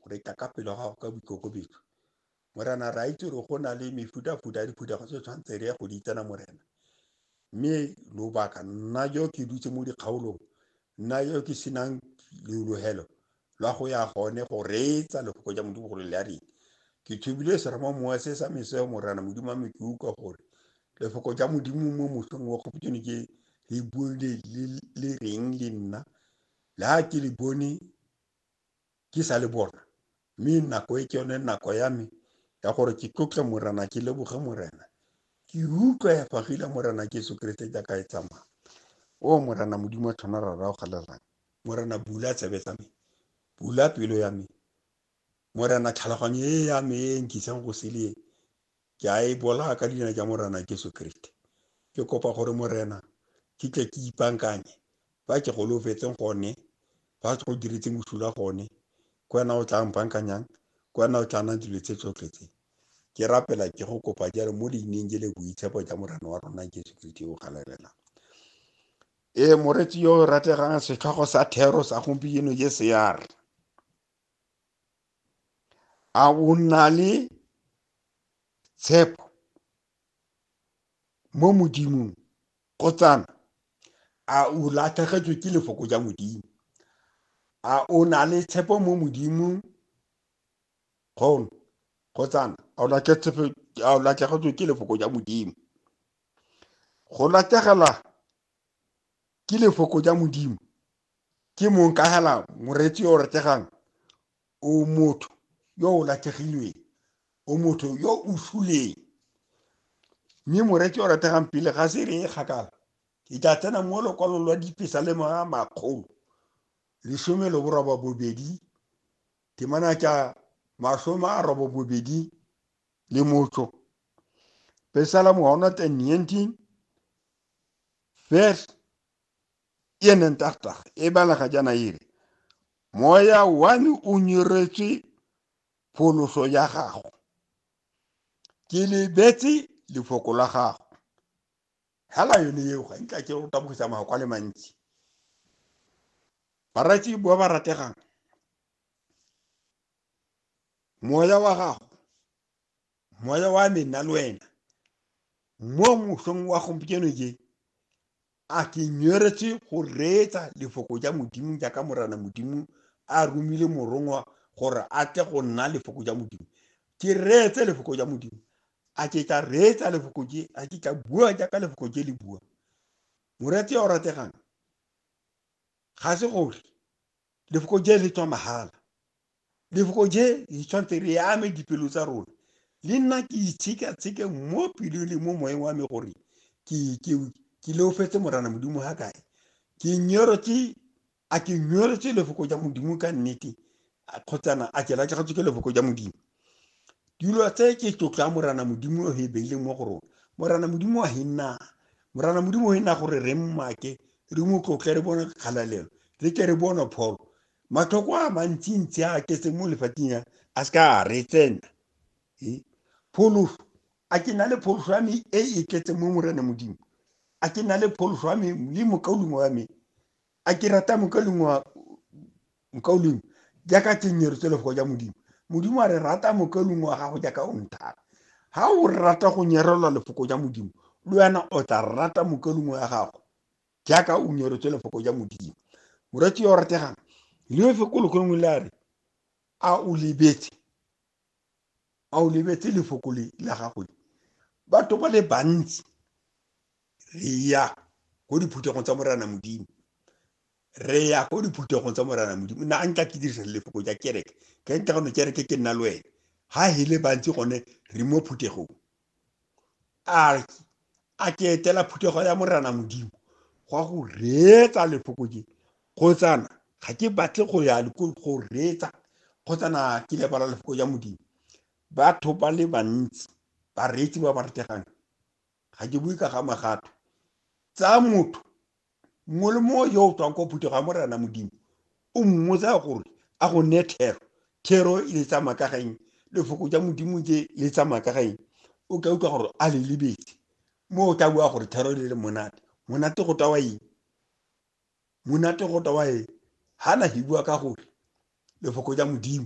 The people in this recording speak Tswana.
Re tla ka pelo gago ka boikokobetso. Morena, re a itse gore go na le mefuta-futa ya diphuthego tse tshwanetse re ya go di tsena Morena. Mme lobaka, nna yo ke dutse mo dikgaolong, nna yo ke senang leologelo la go ya gone go reetsa lefoko ja Modimo gore le a reng. Ke thubile seramo mowa se sa meseo Morena Modimo wa me ke utlwa gore lefoko ja Modimo mo mosong wa kgopotšone ke le bone le reng le nna la ke le bone ke sa le bona mme nako e ke yone nako ya me ya gore ke tlotle morena ke leboge morena ke utlwa ya fagile morena ke yeso keresete jaaka e tsamaya o morena modimo wa tlhona ra rao galelang morena bula tsebe tsa me bula pelo ya me morena tlhaloganyo e ya me e nkisang go sele Ke a e bola ka leina ja Morena Jesu Kriste. Ke kopa gore Morena, ke tle ke ipankanye, fa ke golofetseng gone, fa ke go diretseng bosula gone, ke wena o tla mpankanyang, ke wena o tla nang dilo tse tsotlhe tse. Ke rapela ke go kopa jalo mo leineng je le boitshepo ja Morena wa rona Jesu Kriste yo o galerelang. Ee, moretsi yo o rategang setlhogo sa thero sa gompieno je sear. a o nna le tshepo mo modimong kgotsana a o latlhegetswe ke lefoko ja modimo a o na le tshepo mo modimong kgono kgotsana a o latlhegetswe ke lefoko ja modimo go latlhegela ke lefoko ja modimo ke mong ka hela moreetsi yo o retegang o motho yo o latlhegilweng o motho yo o suleng mme moreetsi o rategang pele ga se re e kgakala ke tla tsena mo lokwalong lwa dipesa le mga makgolo lesome le boroba bobedi temana tša masome a robo bobedi le motso pesala mohono 19 vers e neng tagtaga e balega jaana e re moya one o nyeretswe pholoso ya gago ke lebetse lefoko la gago hela yone eo ga ntla ke go tabogisa magoko a le mantsi baratsi ba ba rategang moya wa gago moya wa me nna le wena mo mosong wa gompieno je a ke nyoretse go reetsa lefoko ja modimo jaaka morana modimo a romile morongwa gore a tle go nna lefoko ja modimo ke reetse lefoko ja modimo a ke tla reetsa lefoko je a ke tla bua jaaka lefoko je le bua moretse o rategang ga se gore Lefoko je le tswa mahala. Lefoko je le tshwanetse re ame dipelo tsa rona. Le nna ke itshekatsheke mo pelong le mo moeng wa me gore ke- ke- ke leofetse morana modimo ga kae ke nyorotse a ke nyorotse lefoko ja modimo ka nnete a- kgotsana a ke latlhegetswe ke lefoko ja modimo dilo tse ke tlotlo ya morana modimo o e beileng mo go rona morana modimo wa henna morana modimo o henna gore re mmake re mo tlotle re bone kgalalelo re ke re bone pholo matlhoko a mantsintsi a ketse mo lefatsheng ya a se ka a re tsena pholoso a ke na le pholoso ya me e e tletseng mo morana modimo a ke na le pholoso ya me le mokaulengwe wa me a ke rata mokaulengwe wa mokaulengwe jaaka tsenyero tse lefoko ja modimo modimo a re rata mokaulengwe wa gago jaaka o nthata ga o rata go nyerelwa lefoko ja modimo le wena o tla rata mokaulengwe ya gago jaaka o nyeretswe lefoko ja modimo moratsi yo o rategang leofe ko lekgolongwe le a re a o lebetse a o lebetse lefoko le la gago le batho ba le bantsi re ya ko diphuthegong tsa morana modimo re ya ko diphuthegong tsa morana modimo na a nka ke dirisa lefoko ja kereke ke nka gone kereke ke nna le wena ha hele bantsi gone re mo phuthegong arki a ke etela phuthego ya morana modimo gwa go reetsa lefokotse kgotsana ga ke batle go ya go reetsa kgotsana ke lebala lefoko ja modimo batho ba le bantsi bareetsi ba ba retegang ga ke bue ka ga magato tsa motho mongwe le mongwe yo o tswang kwa phuthego ya morena modimo o mmotsa gore a go ne thero thero e le tsamaya ka gaeng lefoko ja modimo tse le tsamaya ka gaeng o ka utlwa gore a le lebetse mo o tla bua gore thero le le monate monate go tawa eng monate go tawa eng ga na he bua ka gore lefoko ja modimo